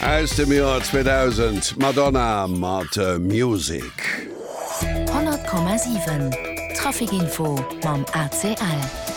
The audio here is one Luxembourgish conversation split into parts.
Aus dem Joer 2000, Madonna mat Music. 100,7 Trafikinfo mam ACL.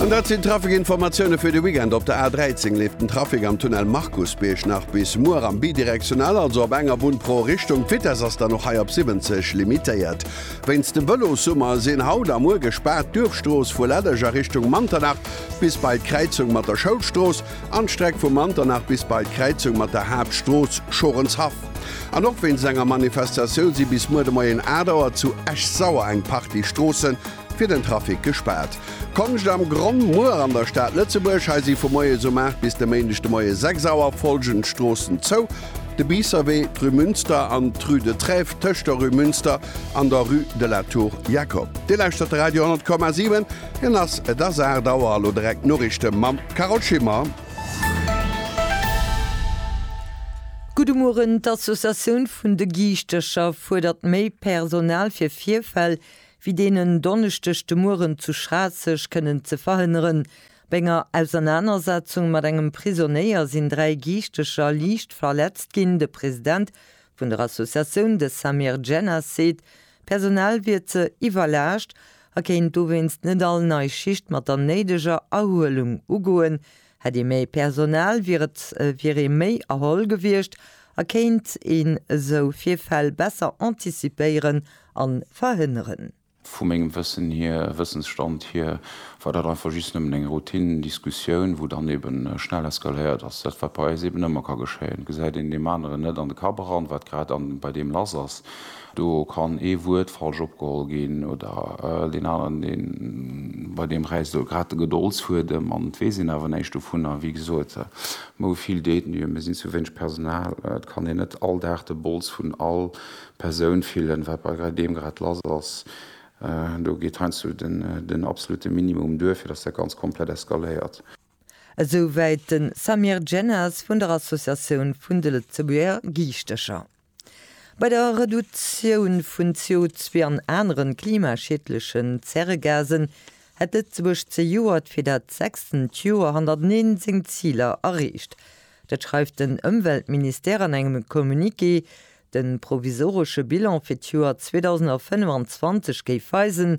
An dat sinn d'Trafikinformatioune fir de Weekend. Op der A13 leeft den Trafik am Tunnel Markusbierg nach bis muer am Bidirektional, also op enger Bunn pro Richtung. D'Vitess ass dann och hei op 70 limitéiert. Wéinst dem Vëlossummer sinn haut a muer gespaart d'Duerfstrooss vu Lällech a Richtung Manternach, Bis bei d'Kräizung mat der Schoulstrooss an d'Streck vu Manternach bis bei d'Kräizung mat der Haaptstrooss, Schorenshaff. An och wéinst enger Manifestatioun si bis muer de Moien 8 Auer zu Esch-Sauer eng Partie Stroosse fir den Trafic gespaart. Konscht am Gronn muer an der Stad Lëtzebuerg. Hei si vu moies um 8 bis de Méindeg de Moie 6 Auer follgend Stroossen zou, de Biisserwee, d'Rue Münster an d'Rue de Trèves tëscht der Rue Münster an der Rue de la Tour Jacob. Dir lauschtert de Radio 10,7. Hien ass. Et ass 8 Auer a lo direkt d'Noriichte mam Carole Schimmer. Gudde Mueren, D'Associatioun vun de Giischtercher fuerdert méi Personal fir Virfäll wéi deen en Donneschdeg de Mueren zu Schraasseg kënnen ze verhënneren. Bei enger Ausernanersetzung mat engem Prisonéier sinn dräi Giischtercher liicht verletzt ginn. De President vun der Associatioun, de Samir Djennas seet, d'Personal wier ze iwwerlaascht a kéint dowéinst net all nei Schicht mat der néideger Erhuelung ugoen. Hätt ee méi Personal, wier et wier ee méi erholl gewiescht a kéint een esou Virfäll besser antizipéieren a verhënneren. Vu mengem Wëssen hier, Wëssensstand hier, war dat einfach just nëmmen eng Routine-Diskussioun, wou dann eben schnell eskaléiert ass. Dat, wat bei eis eben ëmmer ka geschéien, gesäit een deem aneren net an de Kapp eran, wat grad bei deem lass ass. Do kann ee Wuert falsch opgeholl ginn oder deen aneren, dee bei deem räisst elo grad de Gedoldsfuedem an et weess een awer näischt dovunner. Wéi gesot, mou vill Détenue, mir sinn zu wéineg Personal. Et kann een net all Dag de Bols vun all Persoun fillen, wat bei deem grad lass ass. Do geet heiansdo den absolute Minimum duer, fir datt dat Ganzt komplett eskaléiert. Esouwäit de Samir Djennas vun der Associatioun vun de Lëtzebuerger Giischtecher. Bei der Reduktioun vun CO2 an aneren klimaschiedlechen Zäregasen hätt Lëtzebuerg zejoert fir dat sechstent Joer hannerteneen seng Ziler erreecht. Dat schreift den Ëmweltministère an engem Communiqué. De provisoresche Bilan fir d'Joer 2025 géif weisen,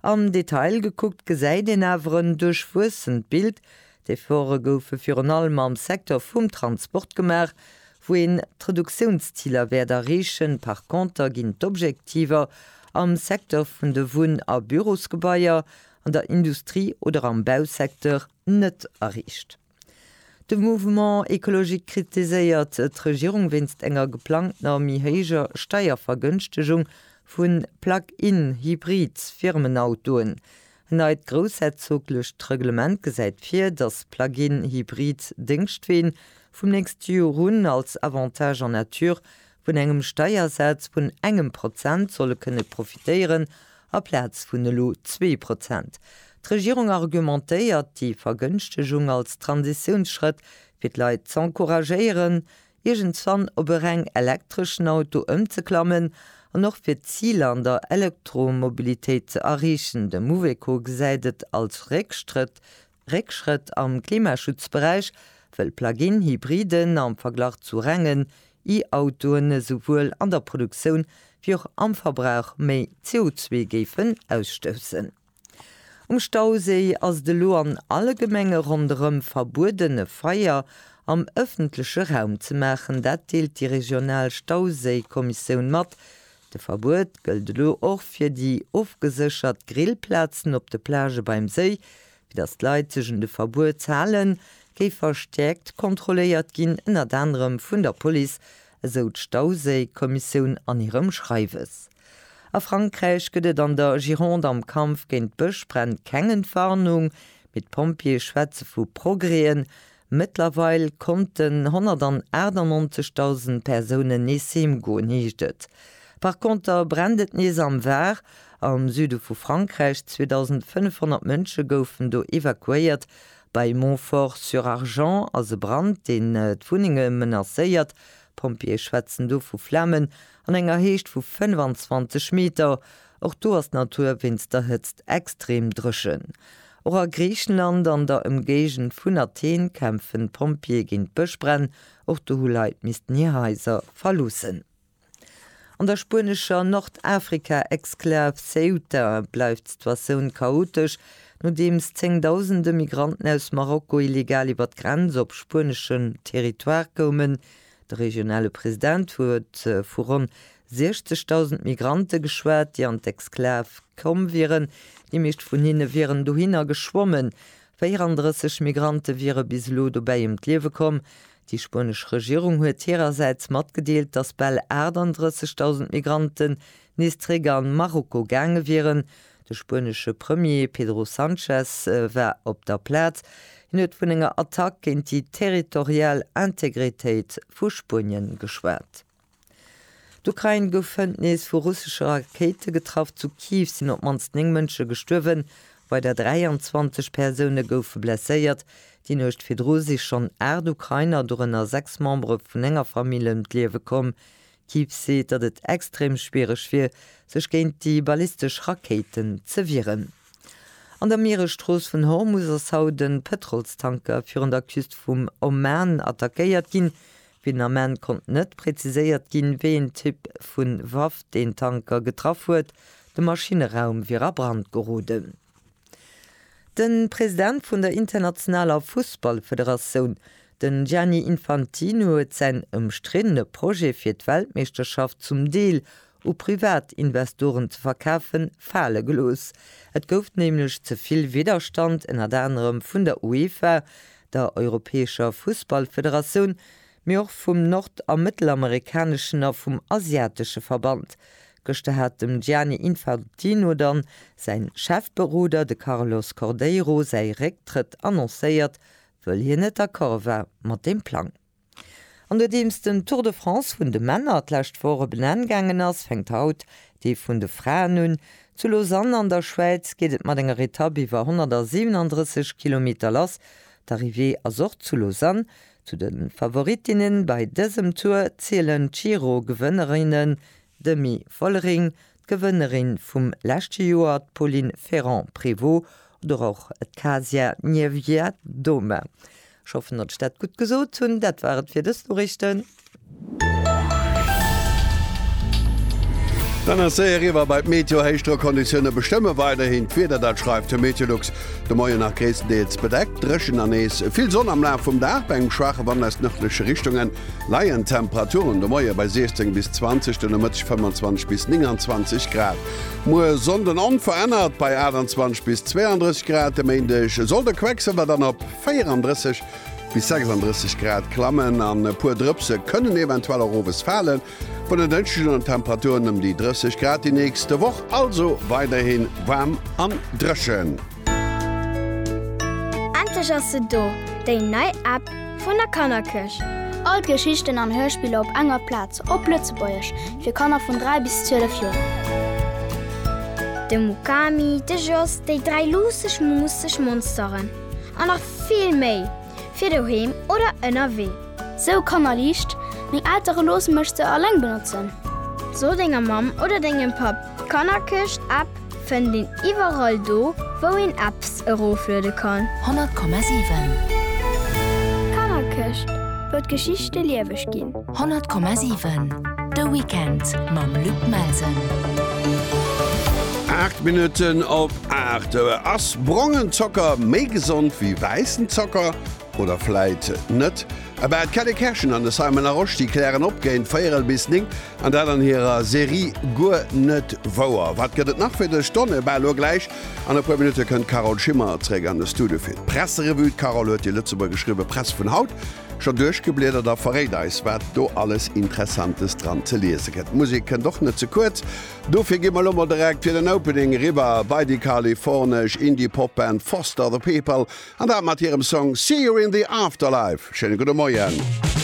Am Detail gekuckt gesäit een awer en duerchwuessent Bild. D'Efforte goufe virun allem am Secteur vum Transport gemaach, wou een d'Reduktiounsziler wäert erreechen. Par conter ginn d'Objektiver am Secteur vun de Wunn a Bürosgebaier, an der Industrie oder am Bausecteur net erreecht. De Mouvement écologique kritiséiert d'Regierung wéinst enger geplangtener méi héijer Steiervergënschtegung vu Plug-in Hybrid Firmenautoen. En neit groussherzoglecht Reglement gesäit vir, datt Plug-in Hybrid Déngschtween vum nächste Jor un als Avantage en nature Vun engem Steiersaz vun engem Prozent soll e kënne profitéieren, aplaz vun elo zwee Prozent. D'Regierung argumentéiert déi Vergënschtegung als Transitiounsschrëtt, fir d'Leit z'encouragéieren, iergendswann op e reng elektreschen Auto ëmzeklammen an och fir d'Ziler an der Elektromobilitéit ze erreechen. De Mouveco gesäit et als Réckstrëtt Réckschrëtt am Klimaschutzberäich, wëll Plug-in Hybriden am Verglach zu rengen E-Autoen esouwuel an der Produktioun wéi och am Verbrauch méi CO2 géifen ausstoussen. Um Stauséi ass et elo an alle Gemenge ronderëm verbueden e Feier am ëffentleche Raum ze maachen. Dat deelt déi regional Stauséikommissioun mat. De Verbuet gëllt elo och fir déi ofgeséchert Grillplazen op de Plagë beim Séi. Fir datt d'Leit sech un de Verbuets halen, géif verstäerkt kontrolléiert ginn, ënnert anerem vun der Police, esou d'Stauséi-Kommissioun an hirem Schreiwes. A Frankräich gëtt et an der Gironde am Kampf géint d'Bëschbränn keng Entwarnung, mee d'Pompjeeë schwätze vu Progrèen, Mëttlerweil konnten 198.000 Persounen nees heem goen, heescht et. Par Konter brennt et nees am Var, am Süde vu Frankräich. 2.500 Mënsche goufen do evakuéiert. Bei Montfort-sur-Argens ass e Brand, deen d'Wunnenge menacéiert. D'Pompjeeë schwätzen do vu Flamen an enger Héicht vu 25 Meter. Och do ass d'Natur wéinst der Hëtzt extrem dréchen. Och a Griichenland an der Ëmgéigend vun Athen kämpfen d'Pompjeeë géint d'Bëschbränn. Och do hu Leit missten hir Haiser verloossen. An der spuenescher Nordafrika-Exklav Ceuta bleift d'Situatioun chaotesch, nodeems zéngdausende Migranten aus Marokko illegal iwwer d'Grenz op spueneschen Territoire koumen. De regionale President huet vu ronn 60.000 Migrante geschwat, déi an d'Exklav komm wieren. Déi meescht vun hinne wieren dohinner geschwommen. 34 Migrante wiere bis elo dobäi ëm d'Liewe komm. Déi spuenesch Regierung huet hirersäits matgedeelt, datt bal 38.000 Migranten nees zréck an Marokko gaange wieren. De spuenesche Premier Pedro Sanchez war op der Plaz. Hien huet vun enger Attack géint déi territorial Integritéit vu Spuenien geschwat. D'Ukrain gouf hënt nees vu russesche Rakéite getraff. Zu Kiew sinn op d'mannst 9 Mënsche gestuerwen, weider 23 Persoune goufe blesséiert. Déi Nuecht virdru si schonn 8 Ukrainer, dorënner 6 Membere vun enger Famill, ëm d'Liewe komm. D'Ekipp seet, datt et extrem schwiereg wier, sech géint déi ballistesch Rakéiten ze wieren. An der Mieresstrooss vun Hormus ass haut e Pëtrolstanker virun der Küst vum Oman attackéiert ginn. Fir den Ament konnt net präziséiert ginn, wéi een Typ vu Waff deen Tanker getraff huet. De Maschinneraum wier a Brand geroden. De President vun der internationaler Fussballfederatioun, de Gianni Infantino huet säin ëmstriddene Projet fir d'Weltmeeschterschaft zum Deel u Privatinvestoren ze verkafen, fale gelooss. Et gouf nämlech ze vill Widderstand, ënnert anerem vun der UEFA, der europäescher Fussballfederatioun, mee och vum nord a mëttelamerikaneschen a vum asiatesche Verband. Gëschter hat dem Gianni Infantino dann säin Chefberoder, de Carlos Cordeiro, säi Récktrëtt annoncéiert, wëll hien net d'accord war mat deem Plang. An nodeems den Tour de France vun de Männer d'lescht Woch op en Enn gaangen ass, fänkt haut dee vun de Fraen un. Zu Lausanne an der Schwäiz geet et mat enger Etapp iwwer 137 Kilometer lass. D'Arrivée ass och zu Lausanne, Zu de Favorittinne bei dësem Tour zielen d'Giro-Gewënnerinne Demi Vollering, d'Gewënnerin vum leschte Joer, d'Pauline Ferrand-Prévot oder och d'Kasia Niewiadoma. Ech hoffen, datt ech dat gutt gesot hunn. Dat war et fir dës Noriichten. Dann ass séier eriwwer bei d'Meteo. Héichdrockconditioune bestëmme weiderhin d'Wieder, dat schreift de Meteolux. De Moien nach gréisstendeels bedeckt, dréchen an nees vill Sonn. Am Laf vum Dag, bei engem schwaache Wand aus nërdleche Richtunge, leien d'Temperaturen de Moie bei 16 bis 20, de Nomëtteg 25 bis 29 Grad. Muer Sonnden onverännert bei 28 bis 32 Grad. De Méindeg soll de Quecksëlwer dann op 34. Bis 36 Grad klammen an e puer Drëpse kënnen eventuell och owes falen. Vun en Dënschdeg un Temperaturen ëm déi 30 Grad déi nächste Woch, also weiderhi waarm an dréchen. Endlech ass se do, déi nei App vun der Kannerkëscht! All d'Geschichten an Hörspiller op enger Plaz, op Lëtzebuergesch, fir Kanner vun 3 bis 12 Joer. De Mukami, de Jos, déi dräi luusseg, muusseg Monsteren. an nach vill méi fir doheem oder ënnerwee. Sou Kanner liicht, Meng Eltere loosse mech se alleng benotzen. So denger Mamm oder dengem Papp, d'Kannerkëscht-App fënnt een iwwerall do, wou een Apps erofluede kann. 100,7. D'Kannerkëscht wëll d'Geschichte lieweg ginn. 100,7 De Weekend mam Luc Melsen. Aacht Minutten op aacht. Ass brongen Zocker méi gesond wéi wäissen Zocker? Oder vläit net? Ebe d'Kelly Kerschen an de Simon Aroschti klären op géint véierel bis néng an dat an hirer Serie Guer net wouer. Wat gëtt et nach fir dech d'Donne? Ebe elo gläich an e puer Minutte kënnt d'Carole Schimmer zréck an de Studio fir d'Presserevue. D'Carole huet déi Lëtzebuergesch Rivepress vun haut Scho duerchgebliedert a verréit eis, wat do alles Interessantes dran ze liese gëtt. D'Musek kënnt och net ze kuerz. Dofir gi mer elo mol direkt fir den Opening eriwwer bei déi kalifornesch Indie-Pop-Band Foster the People, an dat mat hirem Song See You in the Afterlife. Schéine gudde Moien.